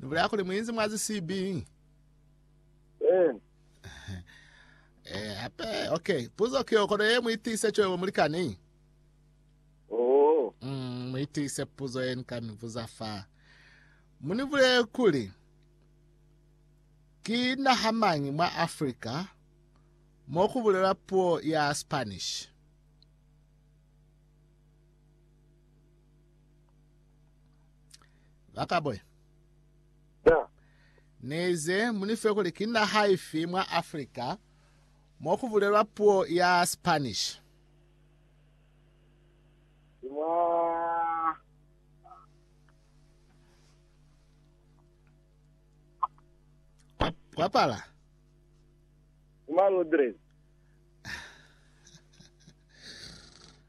Ni bulela kuli mu inzi mwazi sibi. Eh. Eh, hape, okay. Puzo kiyo kono ye muitise choyo mulikani. Oh. Mm, muitise puzo ye nikani vuza fa. Muni vule kuli ki naha mangi mwa Africa mo ku bulela puo ya Spanish. Bakabwe, Na. Nize munife kuli ki naha ifi mwa Africa mo kubulelwa puo ya Spanish? Ni mwa. Kwa, kwapala. Ni mwa Londres.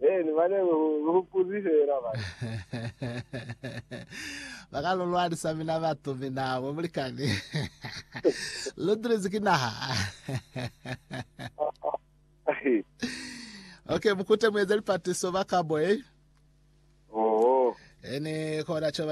He, ni mane lu, lu hupuzi fela mane. Baka lu lwanisa mina batu, mina mwe mulikani. lu tulizi ki naha. okay, mukute mueze lipatiso baka mwe. Oho. Ene kona cho